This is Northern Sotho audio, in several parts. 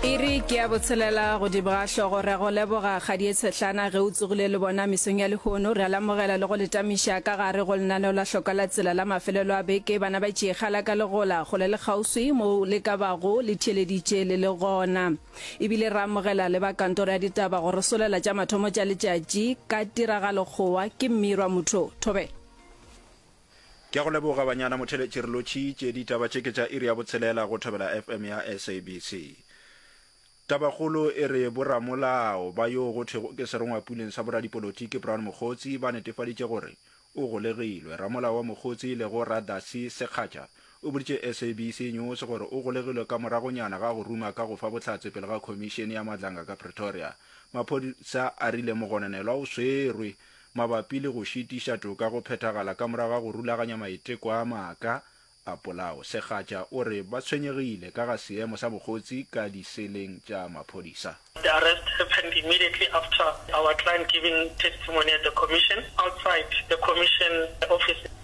iri ke ya botshelela godimo ga hlogo re go leboga kgadi e tshetlana ge o tsogile le bona mesong ya lehono re a lamogela le go letamiša ka gare go lenaneo la hloka la tsela la mafelelo a beke bana ba tšeegala ka legola gole le kgauswi mo le ka bago le theeleditše le le gona ebile re amogela le ba kantoro ya ditaba go re solela tša mathomo tša letšatši ka tiragalokgowa ke mmirwa motho thobela Ke a go leboga Banyana Motheletši re lo tšhi tše ditaba tše ke tša iri ya botshelela go Thobela FM ya SABC. Tabakgolo e re boramolao ba yoo go thwego ke serongwapuleng sa boradipolotiki Brown Mokgotsi ba netefaditše gore o golegilwe. Ramolao wa Mokgotsi le go Radasi Sekgatša o boditše SABC News gore o golegilwe ka moragonyana ga go ruma ka go fa bohlatse pele ga khomišene ya Madlanga ka Pretoria. Maphodisa a rile mogononelwa o swerwe mabapi le go šitiša toka go phethagala ka morago ga go rulaganya maiteko a maaka a polao, Segatša o re ba tshwenyegile ka ga seemo sa bokgotsi ka diseleng tša maphodisa. The arrest happened immediately after our client giving testimony at the Commission outside the Commission offices.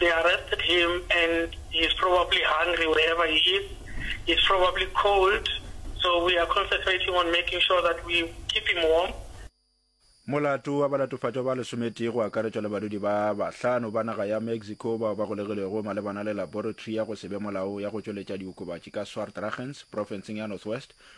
They arrested him and he is probably hungry wherever he is, he is probably cold so we are concentrating on making sure that we keep him warm. Molato wa balatofatšwa ba lesometee go akaretšwa le badudi ba bahlano ba naga ya Mexico bao ba golegilwego malebana le laboratory ya go se be molaong ya go tšweletša diokobatši ka Swartragens, profenseng ya Northwest,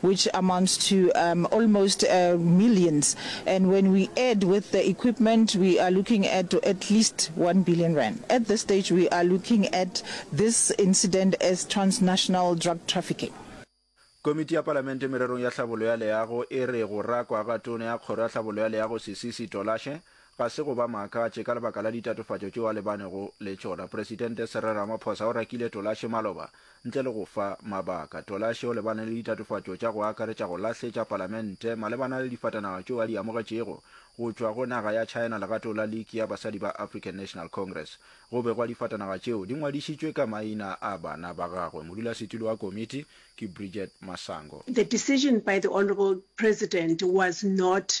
which amounts to um almost uh millions and when we add with the equipment we are looking at at least one billion rand. At this stage we are looking at this incident as transnational drug trafficking. Komiti ya Palamente mererong ya tlhabollo ya leago e re go rakwa ga Tona ya Kgoro ya Tlhabollo ya Leago Sisisi Tolashe ga se go ba makatše ka lebaka la ditatofatšo tšeo a lebanego le tšona. Presidente Cyril Ramaphosa o rakile Tolashe maloba Ntle le go fa mabaka, Tolashe o lebane le ditatofatšo tša go akaretša go lahletša palamente malebana le difatanaga tšeo a di amogetšego go tšwa go naga ya China legatong la Liki ya Basadi ba African National Congress. Go begwa difatanaga tšeo di ngwadišitšwe ka maina a bana ba gagwe. Modulasetulo wa komiti ke Bridget Masango. The decision by the Honourable President was not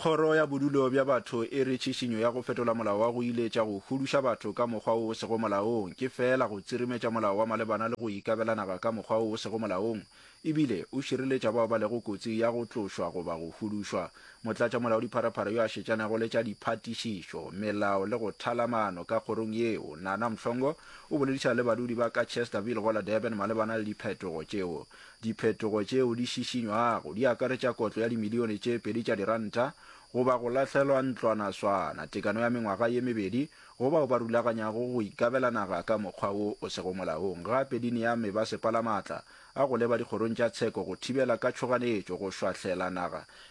Kgoro ya Bodulo bja Batho e re tšhišinyo ya go fetola molao wa go iletša go huduša batho ka mokgwa wo o sego molaong ke feela go tsirimetša molao wa malebana le go ikabela naga ka mokgwa wo o sego molaong e bile o šireletša bao ba lego kotsi ya go tlošwa goba go hudušwa. Motlatšamolaodipharapara yo a šetšanego le tša diphatišišo, melao le go thala maano ka kgorong yeo, Nana Mhlongo, o boledišana le badudi ba ka Chesterville go la Durban malebana le diphetogo tšeo Diphetogo tšeo di šišinywago di akaretša kotlo ya dimilione tše pedi tša diranta goba go lahlelwa ntlwanaswana, tekano ya mengwaga ye mebedi go bao ba rulaganyago go ikabela naga ka mokgwa wo o sego molaong. Gape di nea mebasepala matla a go leba dikgorong tša tsheko go thibela ka tšhoganetšo go šwahlela naga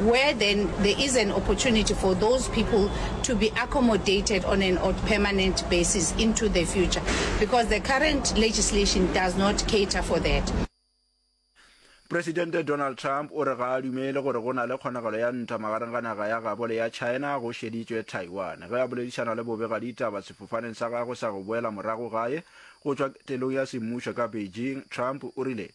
where then there is an opportunity for those people to be accommodated on an or permanent basis into the future because the current legislation does not cater for that. Presidente Donald Trump o re ga a dumele gore go na le kgonagalo ya ntwa magareng ga naga ya gabo le ya China go šeditšwe Taiwan ge a boledišana le bobega ditaba sefofaneng sa gagwe sa go boela morago gae go tšwa ketelong ya semmušo ka Beijing. Trump o rile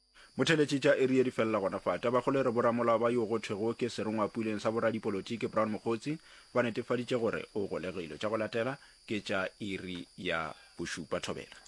Motheletši tša iri ye di felela gona fa. Tabakgolo e re boramolao ba yo go thwego ke serongwapuleng sa boradipolotiki Brown Mokgotsi ba netefaditše gore o golegile. Tša go latela ke tša iri ya bošupa. Thobela.